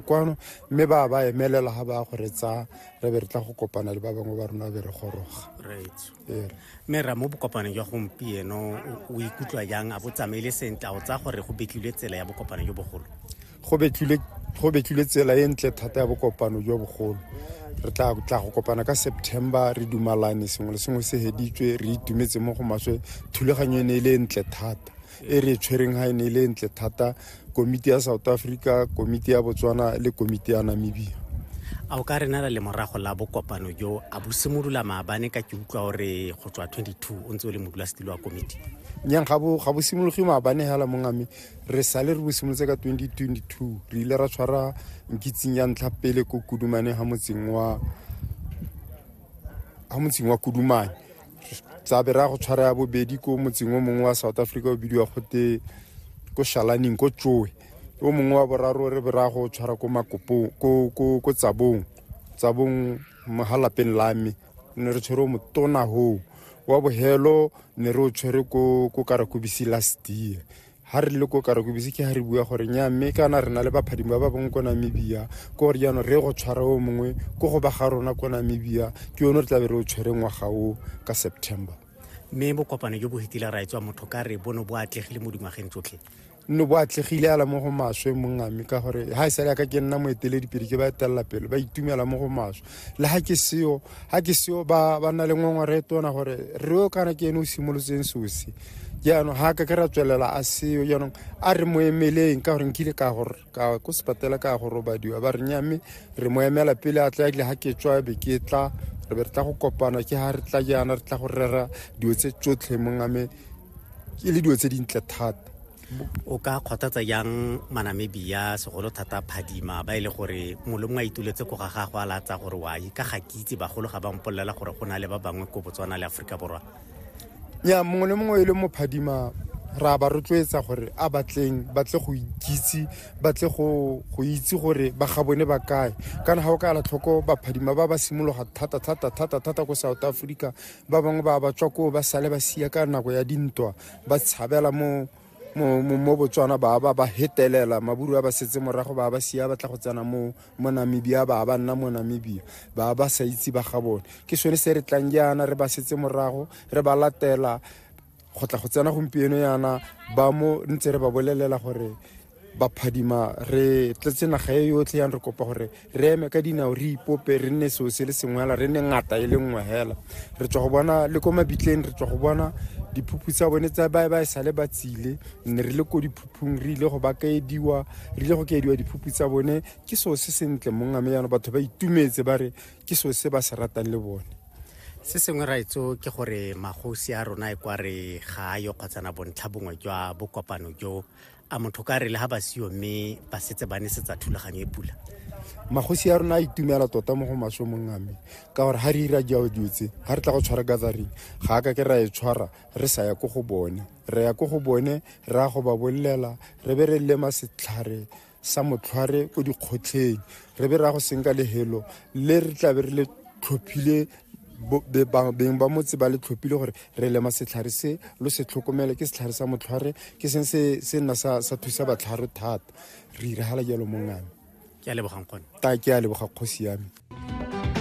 kwano mme ba ba emelela ga ba go re tsaya re be re tla go kopana le ba bangwe ba rona be re goroga mme ra mo bokopaneng jwa gompieno o ikutlwa jang a bo tsamaile sentle o tsaya gore go betlilwe tsela ya bokopano jo bogolo go betlilwe tsela e ntle thata ya bokopano jo bogolo re tla tla go kopana ka september re dumalane sengwe le sengwe se heditswe re itumetse mo go maswe thulaganyo e ne e le ntle thata e re tshwereng ga e ne e le ntle thata komiti ya south africa komiti ya botswana le komiti ya namibia a o ka re nala lemorago la bokopano jo a bo simolola maabane ka ke utlwa gore go tswa 22 o ntse o le modulasetilo wa komiti nyang ga bo simologe maabane fela mongame re sale re bo simolotse ka 2022 re ile ra tshwara nkitsing ya ntlha pele ko kudumane ga motseng wa kudumane tsa bera go tshwara ya bobedi ko motseng o mongwe wa south africa o bidiwa gote ko shalaning ko tsoe o mongwe wa boraro re bera go tshwara ko makopong ko tsabong tsabong ga lapeng la me ne re tshwere o motona hoo wa bohelo ne re o tshwere ko karakobisi last year ha re le ko karakobisi ke ha re bua gore nya mme kana re na le baphadimo ba ba bong ko namibia ko gore jaanong re go tshwara o mongwe ko go ba ga rona ko namibia ke yone re tlabe re o tshwere ngwaga o ka september mme bokopano jo bo fetile ra etswa motho ka re bono bo atlegile mo dingwageng tsotlhe nne bo atlegile ala mo go maswe mongame ka gore ha e sale ya ka ke nna moeteledipedi ke ba etelela pele ba itumela mo go maswe le ga ke seo ga ke seo ba ba nna le ngongore e tona gore re o kana ke ene o simolotseng sosi jaanong ga ka ke ra tswelela a seo jaanong a re mo emeleng ka gore nkile ka gore ka ko sepatela ka go robadiwa ba re nya mme re mo emela pele a tla ekile ga ke tswa be ke tla re be re tla go kopana ke ga re tla jaana re tla go rera dilo tse tsotlhe mongame e le dilo tse dintle thata o ka kgothatsa jang manamibia segolo thata phadima ba e le gore molongwe a ituletse ko ga gagwe a latsa gore wa ka ga ke itse bagolo ga ba mpolelela gore go na le ba bangwe ko botswana le aforika borwa ya mongwe le mongwe e le mo phadima ra ba rotloetsa gore a batleng batle go ikitse batle go itse gore ba ga bone ba kae kana ga o ka ala tlhoko baphadima ba ba simologa thata thata thata thata ko south africa ba bangwe ba ba tswa koo ba sale ba sia ka nako ya dintwa ba tshabela mo mo mo- mo botswana ba ba ba hetelela maburu a ba setse morago ba ba sia ba tla go tsena mo mo namibia ba ba nna mo namibia ba ba sa itse ba ga bone ke sone se re tlang jaana re ba setse morago re ba latela go tla go tsena gompieno yana ba mo ntse re ba bolelela gore baphadima re tletse naga e yotlhe yang re kopa gore re eme ka dinao re ipope re nne seo se le sengwe hela re nne ngata e le nngwe hela re tswa go bona le ko mabitleng re tswa go bona diphuphu tsa bone tsa ba ba e sale ba tsile ne re le ko diphuphung re ile go ba kaediwa re ile go kaediwa diphuphu tsa bone ke seo se sentle mongame yana batho ba itumetse ba re ke seo se ba se ratang le bone se sengwe raetso ke gore magosi a rona e kwa re ga a yo kgotsana bontlha bongwe jwa bokopano jo a motho ka re le ga ba seyo mme ba setse ba nesetsa thulaganyo e pula magosi a rona a itumela tota mo go maswe mong ame ka gore ga re ira jao dilo tse ga re tla go tshwara gathering ga a ka ke ra e tshwara re sa ya ko go bone re ya ko go bone re ya go ba bolelela re be re lema setlhare sa motlhware ko dikgotlheng re be ra go senka lehelo le re tlabe re le tlhophile beng ba motse ba le tlhophile gore re lema setlhare se lo se tlhokomele ke setlhare sa motlhware ke seng se se nna sa sa thusa batlharo thata re iragala jalo mongame ke a lebogang kgone ta ke a leboga kgosi yame